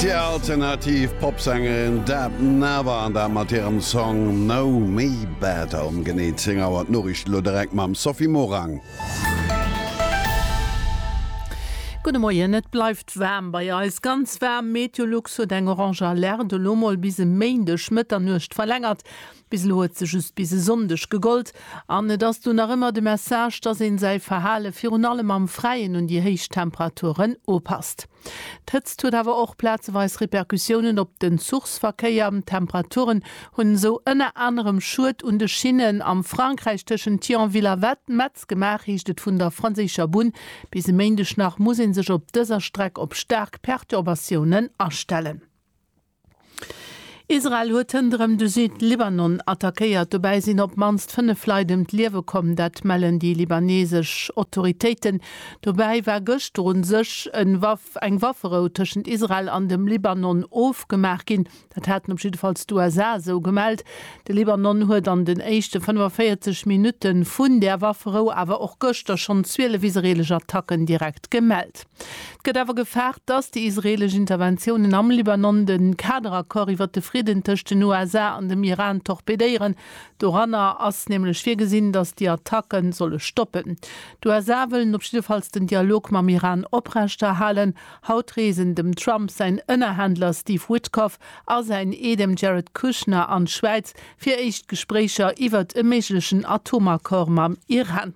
Déi alternativ Popsängerin Deb Never an dat mat hirem Song Know Me Better. Um genee 10 Auer d'Noriichten, elo direkt mam Sophie Morang. Gudde Moien, Et bleift waarm bei eis, ganz waarm. Meteolux huet eng orange Alerte elo mol bis e Méindeg Mëtternuecht verlängert. Bis elo huet se just bis e Sonndeg gegollt an et ass do nach ëmmer de Message, dass een säi Verhale virun allem am Fräien un déi héich Temperaturen upasst. D'Hëtzt huet awer och plazeweis Repercussiounen op den Zuchsverkéier. D'Temperaturen hunn esou ënner anerem Schued un de Schinnen am Frankräich tëschent Thionville a Metz gemaach, heescht et vun der franséischer Bunn. Bis e Méindeg nach muss ee sech op dëser Streck op staark Perturbatiounen astellen. Israel huet hënderëm de Süd-Libanon attackéiert. Dobäi sinn op d'mannst 5 Leit ëm d'Liewe komm, dat mellen déi libanesesch Autoritéiten. Dobäi war gëschter u sech eng Wafferou tëschent Israel an dem Libanon ofgemaach ginn. Dat haten op jiddefalls d'USA esou gemellt. De Libanon huet an den éischte 45 Minutte vun där Wafferou, awer och gëschter schonn 12 israeelesch Attacken direkt gemellt. Et gëtt awer gefaart, datt déi israeelesch Interventiounen am Libanon de Kaderaccord iwwer de Fridden tëscht den USA an dem Iran torpedéieren. Doranner ass nämlech virgesinn, datt déi Attacke solle stoppen. D'USA wëllen op jiddefalls den Dialog mam Iran oprechterhalen. Haut reesen dem Trump säin Ënnerhändler Steve Witkoff a säin Eedem Jared Kushner an d'Schwäiz fir éischt Gespréicher iwwert e méiglechen Atomaccord mam Iran.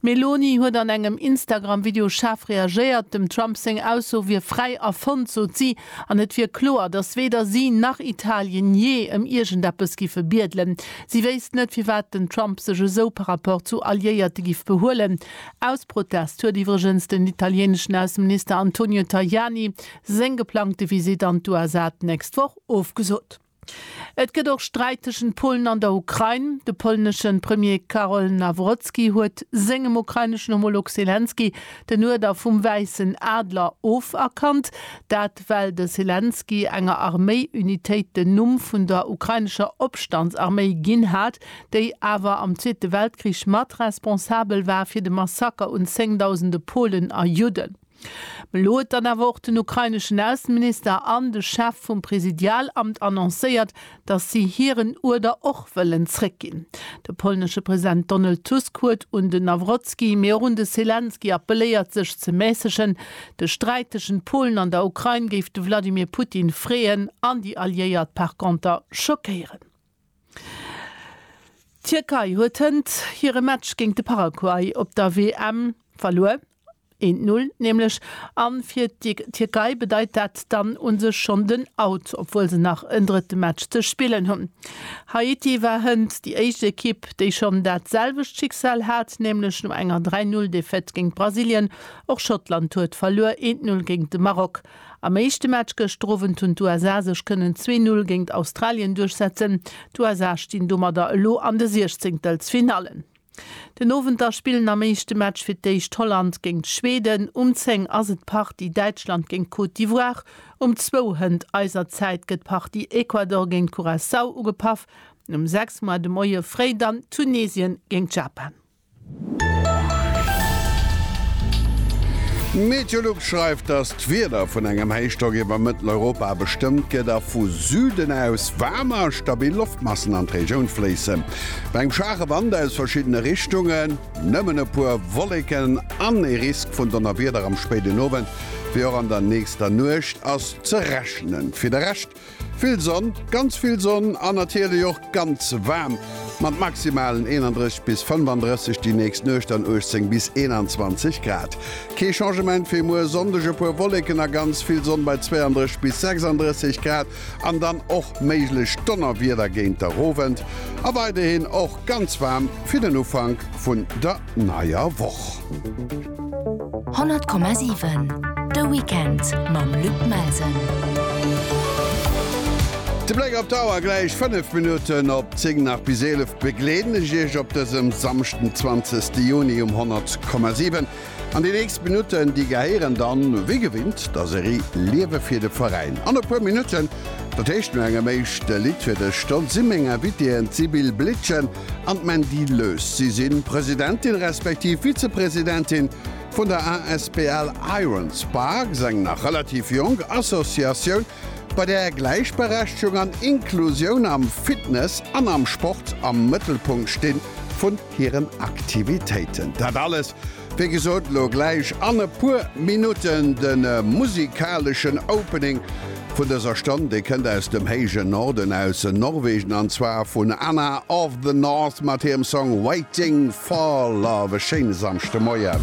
D'Meloni huet an engem Instagram-Video schaarf reagéiert. Dem Trump seng Ausso wier fräi erfonnt, sot si, an et wier kloer, datt weder si nach Italien jee ëm iergendeppes giffe biedelen. Si wéisst net, firwat den Trump sech esou par rapport zu Alliéierte giff behuelen. Aus Protest huet iwwregens den italieneschen Ausseminister Antonio Tajani seng geplangte Visitt an d'USA d'nächst Woch ofgesot. Et gëtt och Sträit tëschent Polen an der Ukrain. De polnesche Premier Karol Nawrocki huet sengem ukraineschen Homolog Selenskyj den Uerder vum Wäissen Adler oferkannt. Dat well de Selenskyj enger Arméi-Unitéit den Numm vun der ukrainescher Opstandsarméi ginn hat, déi awer am Zweete Weltkrich mat responsabel war fir de Massaker un zéngdausende Polen a Judden. Elo huet dann awer och den ukraineschen Ausseminister an de Chef vum Presidialamt annoncéiert, datt si hiren Uerder och wëllen zréckginn. De polnesche President Donald Tusk huet un de Nawrocki, mee och un de Selenskyj appeléiert sech ze mässegen. De Sträit tëschent Polen an der Ukrain géif de Wladimir Putin freeën an déi Alliéiert par conter schockéieren. D'Tierkei huet hënt hire Match géint de Paraguay op der WM verluer. Eent Null nämlech, an fir d'Tierkei bedeit dat dann un sech schonn den Out, obwuel se nach en drëtte Match ze spillen hunn. Haiti war hënt, déi éischt Ekipp, déi schonn dat selwecht Schicksal hat, nämlech no enger 3 Null Defaite géint Brasilien. Och Schottland huet verluer, eent Null géint de Maroc. Am éischte Match gëschter Owend hunn d'USA sech kënnen zwee Null géint Australien duerchsetzen. D'USA stinn domadder elo an de Siechzéngtelsfinallen. Den Owend da spillen am éischte Match fir d'éischt Holland géingt Schweden, um 10 ass et d'Partie Däitschland géint Côte d'Ivoire, um zwou Hënt eiser Zäit gëtt d'Partie Ecuador géint Curaçao ugepaff an um 6 Moer de Moie fréi dann Tunesien géingt Japan. Meteolux schreift, dass d'Wieder vun engem Héichdrock iwwer Mëtteleuropa bestëmmt gëtt a vu Süden aus waarmer a stabil Loftmassen an d'Regioun fléissen. Bei engem schwaache Wand aus verschiddene Richtungen, nëmmen e puer Wolleken an e Risk vun Donnerwieder am spéiden Owend wéi och an der nächster Nuecht ass ze rechnen. Fir de Rescht vill Sonn, ganz vill Sonn an natierlech och ganz waarm mat Maximalen 31 bis 35, déi nächst Nuecht dann 18 bis 21 Grad. Kee Changement fir muer Sonndeg, e puer Wolleken a ganz vill Sonn bei 32 bis 36 Grad. an dann och méiglech Donnerwieder géint der Owend a weiderhin och ganz waarm fir den Ufank vun der neier Woch. 100,7 De Weekend mam Luc Melsen. De Bléck op d'Auer, Gläich 5 Minutten op 10 nach bis 11 begleeden ech Iech op dësem Samschden 20 Juni um 100,7. An den nächst Minutten déi gehéieren dann wéi gewinnt der Serie Liewe fir de Veräin. An e puer Minutten, dat heescht no engem éischte Lidd fir dech Stond, si meng Invitéen d'Sibylle Blitschen an d'Mandy Lös. Si si Presidentin respektiv Vizepresidentin vun der asbl Iron Sparks, eng nach relativ jonk Associatioun, bei där Gläichberechtegung an Inklusioun am Fitness an am Sport am Mëttelpunkt sti vun hiren Aktivitéiten. Dat alles, wéi gesot, elo gläich an e puer Minutten. De musikaleschen Opening vun dëser Stonn, dee kënnt aus dem héijen Norden, aus Norwegen, an zwar vun Anna of the North mat hirem Song Waiting for Love. E schéine Samschdemoien.